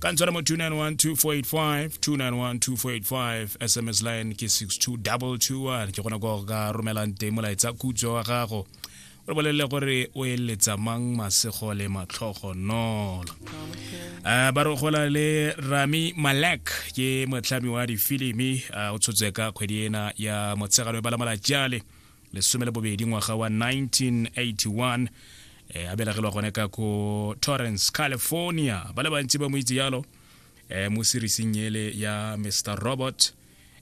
ka ntshware mo 2912485 sms line ke 62221 ke gona go ka romelang teng molaetsa khutso wa gago o re bolelele gore o eletsa mang masego le matlhogo nolo a ba re gola le rami malek ke motlhami wa difilimi o tshotse ka kgwedi ena ya motshegano e bala malatjale lesome le bobedi ngwaga wa 1981 eh, a belagelwa gone ka ko torrance california ba le bantsi ba mo itse yalo eh, mo serising ele ya mr robot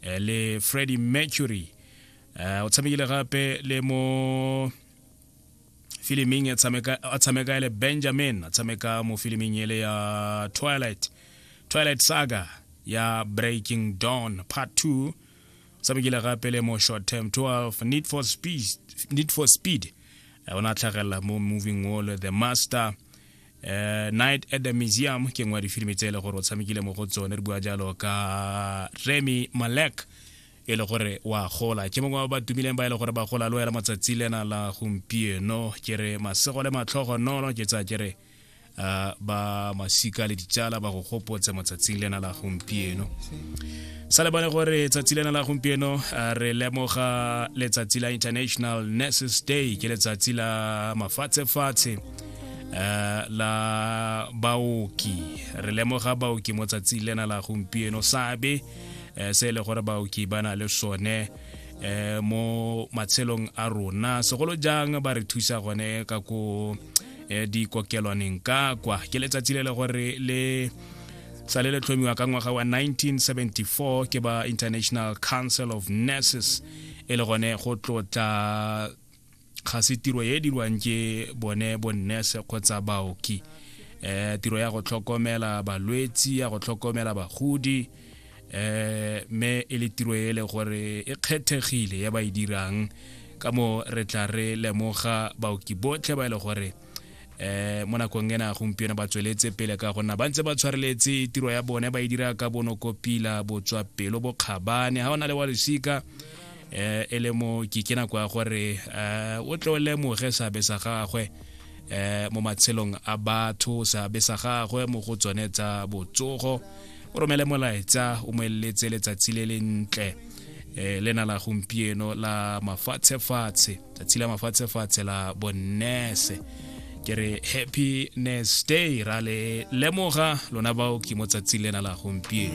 eh, le freddy mercury eh, o tshamekile gape le mo filiming a tshameka ele benjamin a tshameka mo filiming ele ya twilight twilight saga ya breaking dawn part 2 sa bekile gape le mo short term 12 need for speed, need for speed. Uh, o ne a tlhagelela mo moving wall the master uh, night at the museum ke nngwe ya difilimi tse e le gore o tshamekile mo go tsone re bua jalo ka remy malek e le gore wa gola ke mongwe wa ba tumileng ba e le gore ba gola le wela matsatsi lena la gompieno ke re masego le matlhogo nono ke tsa ke re uh, ba masika le ditsala ba go gopotse motsatsing lena la gompieno sa lebane gore tsatsi lena la gompieno uh, re lemoga letsatsi la international nurses day ke letsatsi la mafatshefatshe uh, la baoki re lemoga baoki mo tsatsing lena la gompieno sabe uh, se e le gore baoki ba na le sone eh, mo matshelong a rona segolo jang ba re thusa gone ka ko uh, eh, di kokelwaneng ka kwa ke letsatsi le le gore le sa le le tlhomiwa ka ngwaga wa 1974 ke ba international council of nurses e le gone go tlotla ga se tiro e dirwang ke bone bonnese kgotsa baoki um tiro ya go tlhokomela balwetsi ya go tlhokomela bagodi eh me e le tiro ele gore e kgethegile ya ba e dirang ka mo re tla re lemoga baoki botlhe ba e le gore eh mo nakong ena gompieno ba tsweletse pele ka gonna ba ntse ba tshwareletse tiro ya bone ba e dira ka bonokopila botswa pelo bokgabane ga o na le wa lesika eh e le mo ke ke nako ya gore eh o tle o lemoge seabe sa gagwe eh mo matshelong a batho seabe sa gagwe mo go tsone tsa botsogo o romele molaetsa o mo eletse letsatsi le le ntle eh le na la gompieno la mafatshe fatshe tsatsi la mafatshe fatshe la bonnese ke re happy nurse day ra le lemoga lona bao ke mo tsatsing lena la gompieno